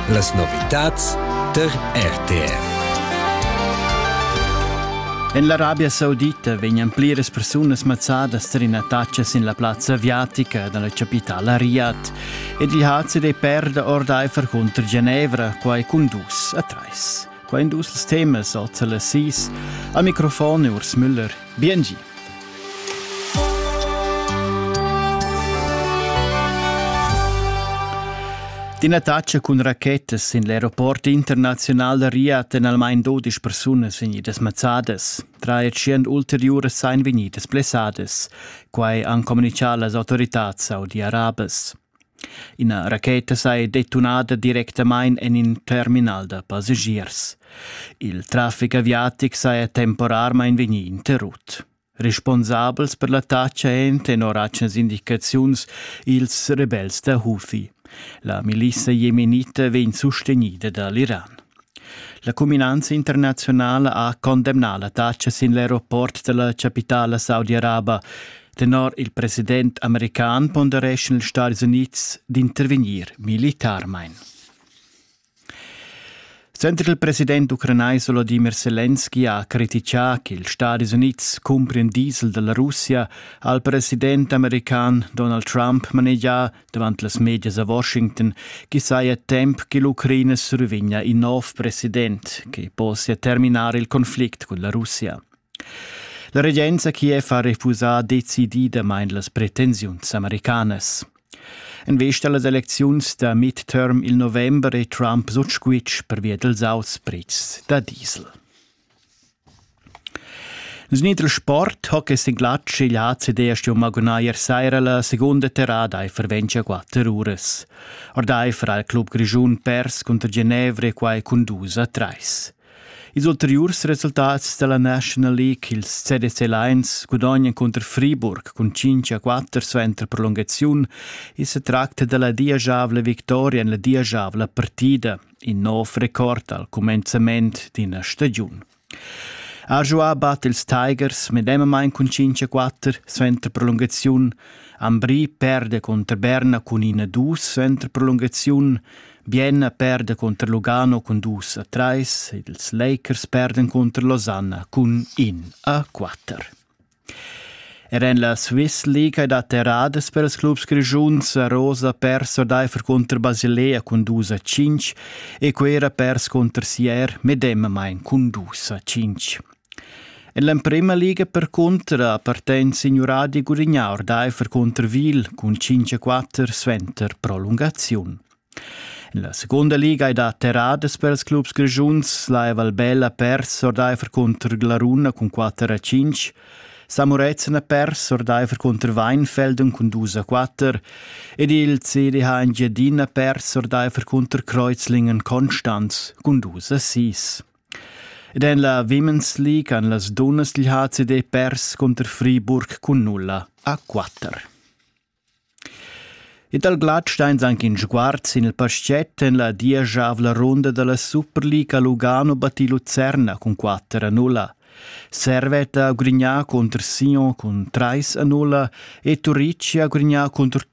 Las novitads tar RTR. En l'Arabia Saudita vegnan pliras persunas mazzadas tar ina taccia sin la plazza aviatica da la chapitala Riyadh ed il hazi dei perda ordaifer cunter Genevra, quai cun dus a trais. vain dus ils temas al Telesis a microfon Urs Müller. Biengi. Din attacca cun rachetas in l'aeroport internaziunal da Riyadh en almain 12 persunas vegnidas mazzadas. Tra tschient ulteriuras sein vegnidas blessadas. Quai han communichà las autorità saudi-arabas. Ina racheta saja detunada directamain en in terminal da passagiers. Il traffic aviatic saja temporarmain vegnì interrut. Responsabels per l'attacca èn tenor atgnas indicaziuns ils rebels da Houthi. La milissa jemenita vegn sustegnida da l'Iran. La cuminanza internazionala ha condemnà l'attacca sin l'aeroport della capitala saudi-araba Tenor il president american pondereschan ils Stati Unids d'intervegnir militarmain. Senter il president ucranais Volodymyr Zelensky ha criticà che ils Stati Unids cumprin diesel dalla Russia ha il president american Donald Trump manegià davant las medias a Washington che saja temp che l'Ucraina survegnia in nov president che possia terminar il conflict cun la Russia. La regenza Kiev ha refusà decididamain las pretensiuns americanas. En vista a las elecziuns da midterm il november è Trump sut squitsch pervia dals auspretschs da diesel. Nus nitr sport ho quest in glatsch igl ACD sto magunair saira la segunda terrada e ferventia quatter uras. Ordaifer al club grischun pers cunter Genevre quai cun dus a trais. Ils ulteriurs resultats dalla National League, ils CDC Lions, gudognan cunter Friburg cun 5 a 4 suenter prolungaziun. I se tracta dalla diajavla victoria en la diajavla partida, in nov record al cumenzament d'ina stagiun. Arjoa bat ils Tigers medemamain cun 5 a 4 suenter prolungaziun. Ambri perde contro Berna cun 1 a 2 suenter prolungaziun. Bien perda cunter Lugano cun dus a trais, ils Lakers perdan cunter Losanna cun in a quatter. Er en la Swiss League hai dat erradas per ils clubs grischuns. Rosa ha perso ordaifer cunter Basilea cun 2 a 5 e Quera pers cunter Sier medemamain cun 2 a 5. En l'emprema liga percunter appartegn signuradi Gurignà ordaifer cunter Wil cun 5-4 suenter prolungaziun. En la secunda liga ei dat terradas per ils clubs grischuns. La Valbella pers ordaifer cunter Glaruna cun 4-5. Samurezen ha pers ordaifer cunter Weinfelden cun 2-4 ed il CDH Engiadina pers ordaifer cunter Kreuzlingen Konstanz cun 2-6. Ed en la Women's League han las dunnas dil HCD pers cunter Friburg cun nulla a quatter. E dal glatsch steins anche in sguard sin il paschett en la dieschavla runda dalla Superliga Lugano batti Lucerna cun 4 a 0. Servette a Grigna contr Sion cun 3 a 0 e Turici a Grigna contr